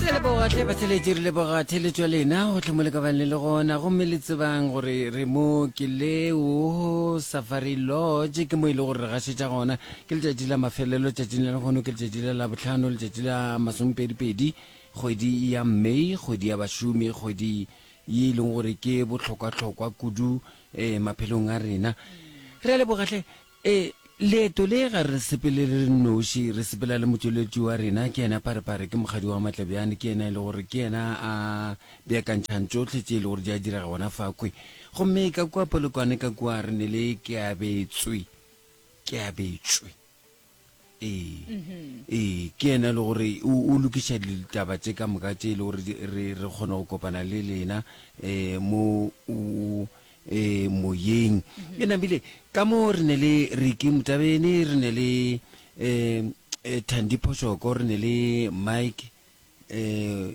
re leboga tle batheletši re leboga theletšo ya lena go tlhomo le ka bang le le gona gomme le tsebang gore re mo ke leo safari lodge ke mo e le gore re gašetša gona ke letšatši la mafelelo tšatšing la legono ke letšatši la labotlhano letšatši la masomepedipedi kgwedi ya may kgwedi ya bašomi kgwedi ye e leng gore ke bohlokwahlokwa kudu um maphelong a rena re a lebogatlhe Ee, leeto le, ga re sepele re le nnoši, re sepela le Motšweletši wa rena, ke yena Pharepare, ke Mokgadi wa Maatla bjane, ke yena e le gore ke yena a beakantšhang tšohle tše e le gore di a direga gona fa kwe. Gomme ka kua polokwane ka kua re ne le, ke abetswe, ke abetšwe. ee ee ke yena e le gore o o lokiša ditaba tše ka moka tše e le gore di- re re kgone go kopana le lena um mo o- eh, moyeng e namile ka mo re ne le riki motabene re ne le um thandi phošoko re ne le mike um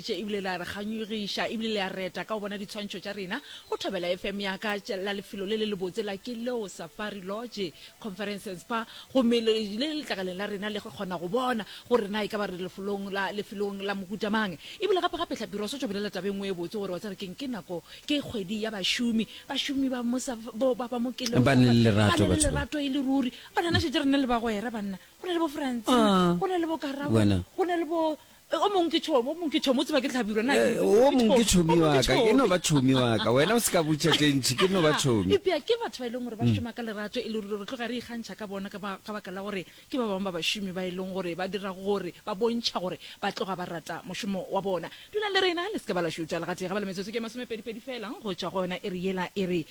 Tše ebile la re kganyogiša ebile le a reta ka go bona ditshwantšho tša rena go Thobela FM ya ka tše la lefelo le le lebotse la Kileo Safari Lodge Conference and Spa gomme le le letlakaleng la rena le kgona go bona gore na e ka ba re lefolong la lefelong la mohuta mang. Ebile gape gape Tlhapi re o swetšwa bolela taba e nngwe e botse gore wa tseba keng ke nako ke kgwedi ya bašomi bašomi ba mo sa bo ba ba mo Kileo Ba na le Safari ba lerato na le batho ba. lerato e le ruri banana šetše re na le bagwera banna go na le bo Francina Ah, go na le bo Karabo wena. go na le bo Eh, o mong ke tšhomi, o mong ke tšhomi, o tseba ke hlabirwa na? Eh, o mong ke tšhomi wa ka, ke no ba tšhomi wa ka, wena o se ka butša tše ntšhi, ke no ba tšhomi. Epea ke batho ba e leng gore ba mm. šoma ka lerato e le ruri, re tloga re ikgantšha ka bona ka baka la gore ke ba bangwe ba bašomi ba e leng gore ba dira gore ba bontšha gore ba tloga ba rata mošomo wa bona. Dulang le rena, le se ke ba la šutša legatee ga ba le metsotso ke masomepedipedi fela go tšwa go yona e re yela e re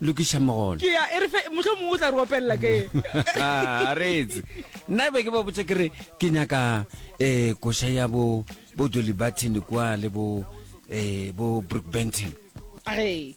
Lokiša mogolo. Ke ya, e re fe, mohlomongwe o tla re opelela ke. A re etse. Nna e be ke ba botša ke re, ke nyaka um koša ya bo, bo Dolly Barton kwa le bo um bo Brookbanton. A re.